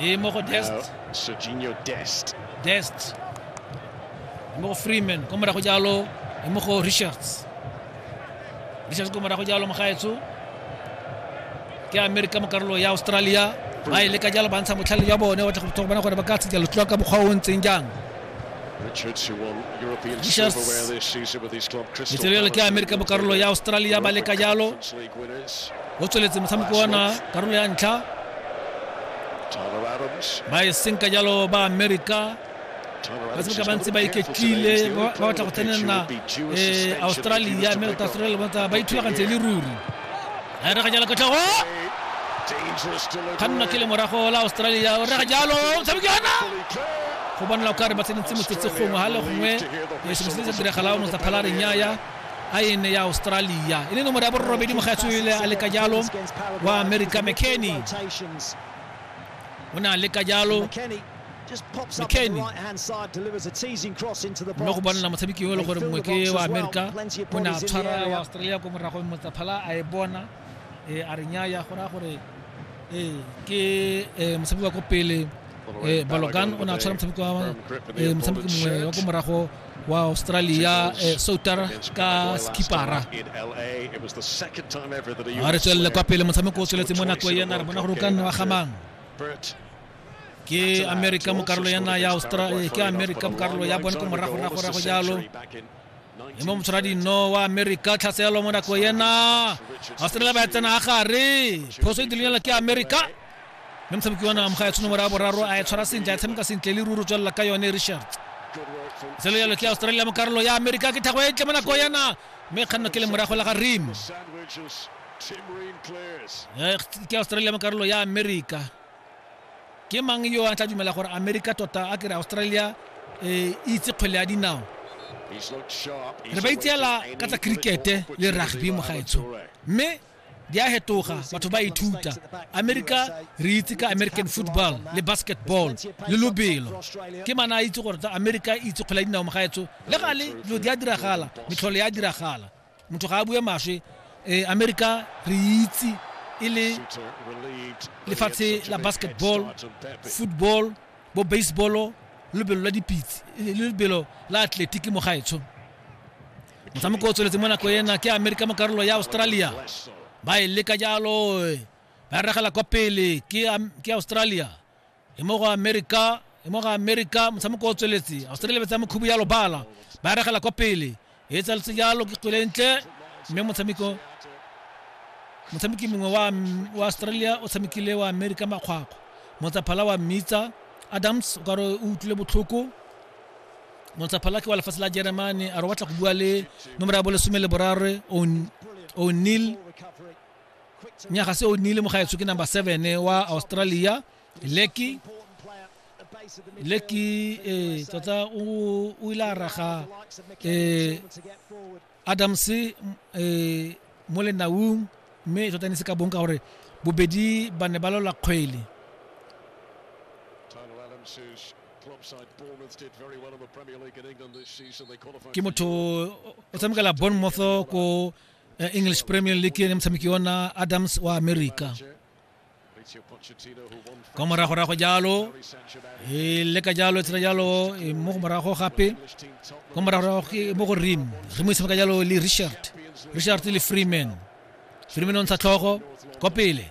e mo go dest dest dest e mo go freeman ko morago jalo e mo go richards richards ko morago jalo mogaetso ke amerika mo karolo ya australia ba e leka jalo ba ntsha motlhale jwa bone wa tla go bona gore ba ka tshejalo tloa ka mokgwa o o ntseng jang Richards letselelo le ke amerika mo karolo ya australia ba leka jalo o tsweletse motshameko ona karolo ya ntlha ba e senka jalo ba amerika ba tshameka ba ntse ba iketlile ba batla go tsenela australia mme australia ba ithulagantse le ruri a e rega jalo ka tlhogo kganna ke le morago la australia o rega jalo motshameki ona go bonela o kare ba tsenetse motsetse gongwe ga le gongwe e sengwe se se diragala o notsa phala reng yaya a ene ya australia e le nomoro ya borobedi mogaetswele a leka jalo wa america mckenny o ne a leka jalo mccain mo go bonela motshameki yo e le gore mongwe ke wa amerika o ne a tshwara wa australia ko moragong motsaphala a e bona um a re nyaya go raya gore ee ke eh, motshameki wa ko pele eh, balogan o ne a tshwara motshameki mongwe wa ko morago wa australia souter ka skipara a re tswelele kwa pele motshameko o tsweletse mo nako ena re bona gore o ka nne wa gamang ke america mo karolo ya naga ya australia ke america mo karolo ya bone ko moragoragorago jalo e mo motshwara dino wa america tlhaselo mo nako ena australia ba tsena a gare phoso e dilenyela ke america mme motshameki wa naga moga ya tshono morago boraro a e tshwara sentle a e tshameka sentle le ruru tswelela ka yone richard selo yalo ke australia mo karolo ya america ke thago e tle mo nako ena mme kganno ke le morago la ga rim ke australia mo karolo ya america Ke mang yo a tla dumela gore Amerika tota a ke re Australia e itse kgwele ya dinao? Re ba itseela ka tsa cricket le rugby mogaetsho. Mme di a hetoga batho ba ithuta amerika re itse ka american football le basketball le lobelo ke mana a itse gore tsa amerika itse kgwele ya dinao mogaetso le gale dilo di a diragala metlhole ya diragala motho ga a bue maswe um america re itse e le lefatshe la basketball football bo baseball lebelo la dipitse le lebelo la athletic mo gaetsho motshameko o tsweletse mo nako ena ke amerika mo karolo ya australia ba e leka jalo ba regela kwa pele ke australia e mo go amerika e mo go amerika motshameko o tsweletse australia ba tsaya mokhubu ya lobala ba regela kwa pele e tsaletse jalo ke kgwele ntle mme motshameko motshameki mongwe wa, wa australia o tshamekile wa amerika makgwakgwa motsaphala wa mmitsa adams o kare o utlwile botlhoko motsaphala ke wa lefatshe la jeremane a re o batla go bua le nomoro ya bolesome le borare o'neil nyaga se o nnile mogaetsho ke number seven wa australia leki leki eh, tota o ile a raga eh, adams eh, mo lenaung mme tota ne se ka bong ka gore bobedi ba ne ba lola kgwele ke motho o tshamekela bournemouth ko eh, English Premier League ni motshameki ona Adams wa America ka moragorago jalo e leka jalo e tsena jalo e mo go morago gape ka moragorago ke mo go rim rim e tshameka jalo le richard richard le freeman freeman o ntsha tlhogo kwa pele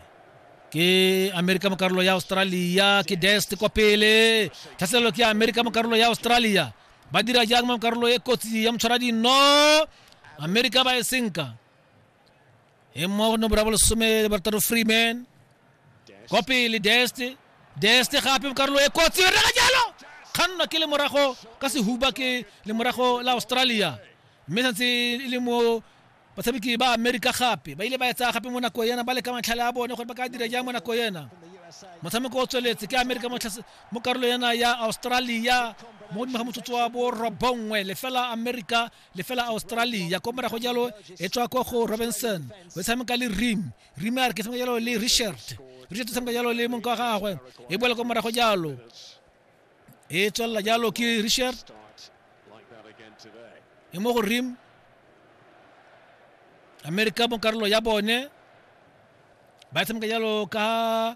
ke amerika mo karolo ya australia ke dest kwa pele tlhaselelo ke amerika mo karolo ya australia ba dira jang mo karolo e kotsi ya motshwara dino amerika ba e senka e mmoa go nomoro ya bolesome le barataro freeman kwa pele deste deste gape mo karolo e kotsi e rega jalo kgannwa ke lemorago ka sehuba ke lemorago la australia mme santse e le mo batshameki ba amerika gape ba ile ba etsa gape mo nako ena ba leka matlhale a bone gore ba ka dira jang mo nako ena motshameko o tsweletse ke amerika mo tlase- mo karolo ena ya australia mo godimo ga motsotso wa borobongwe lefela amerika le fela australia ko morago jalo e tswa ko go robinson o tshameka le rim rim a re ke tshameka jalo le richard richard o tshameka jalo le monka wa gagwe e boela ko morago jalo e tswelela jalo ke richard e mo go rim amerika mo karolo ya bone ba tshameka jalo ka